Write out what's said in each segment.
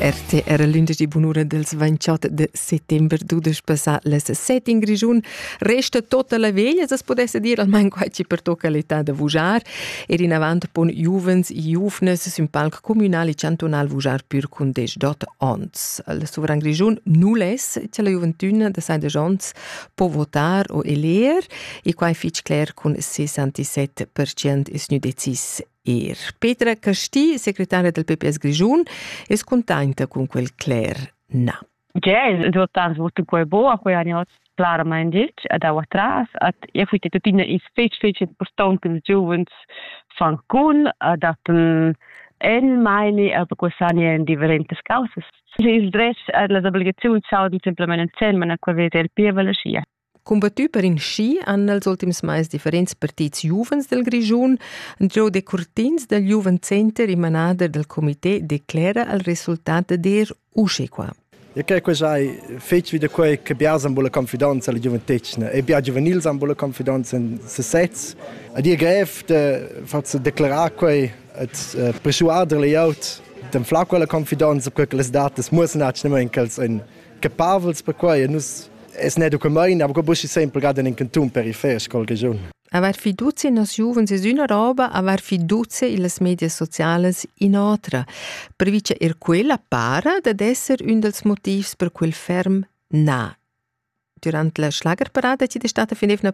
RT era lunedì bun'ura dels 28 de settember dudesch passà les set in Grischun. Resta tota la veglia, se podesse dir almain quai ci pertocca l'età da vujar. Ed in avant pon giuvens e giuvnes sün palc communal e cantonal vujar pür cun desdot ons. Il sovran Grischun null es che la gioventüna de sai de ons po votar o eler e quai fich cler cun 67% es nu decis Er Petra Casti, secretaria del PPS Grischun, es contenta con quel cler na. Ja, es important vot quel bo a quei anni clarament ditg ad our tras at e fuit tuttina is fetg fetg important che ils giovens fan con ad appen en meine aber quest'anno in differentes causas. Il dress ad las obligazioni sau di simplemente in man a quel vede il pievel sia. Combattü per in schi han nels ultims mais differents partits giuvens del Grischun. Giò Decurtins dal Jugendcenter in manader del comité declera al resultat der usche qua. E che que sai fetg wieder quei che bia san bola confidenza alla giuventetgna e bia giuvenil san bola confidenza in se sez. A dir grev de fazzo declarar quei et uh, persuader le aut dem fla quella confidenza quei che les datas muss nachnemen chels in che pavels perquai nus es ne documain, aber buschi sempre gerade in canton per i fer col regiun. Aver fiducia in nos giuvens es üna roba, aver fiducia illas medias sociales in otra. Previce er quella para dad esser ün dels motivs per quel ferm na. Durante la Schlagerparade ci è stata fin evna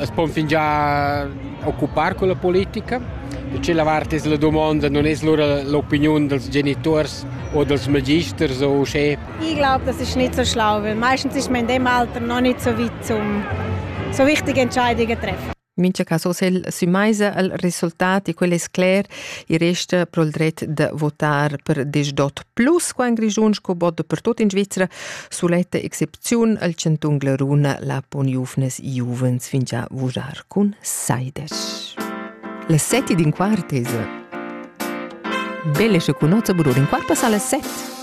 As pon fingià occupar culla politica. Tschella vart es la dumonda non es lura l'opiniun dals genituors o dals magisters o uschè. Ich glaube, das ist nicht so schlau, weil meistens ist man in dem Alter noch nicht so weit, um so wichtige Entscheidungen zu treffen. Mincha cas hosel sü maisa al resultat e quel es cler, i resta pro il dret de votar per des dot plus qua in Grischun sco bod per tot in Svizzera suletta Cun el chantun Glaruna la pon giuvnas giuvens fingià vurar cun saides. La sette d'in quart es belle che cunozza burur in quarta sa la sette.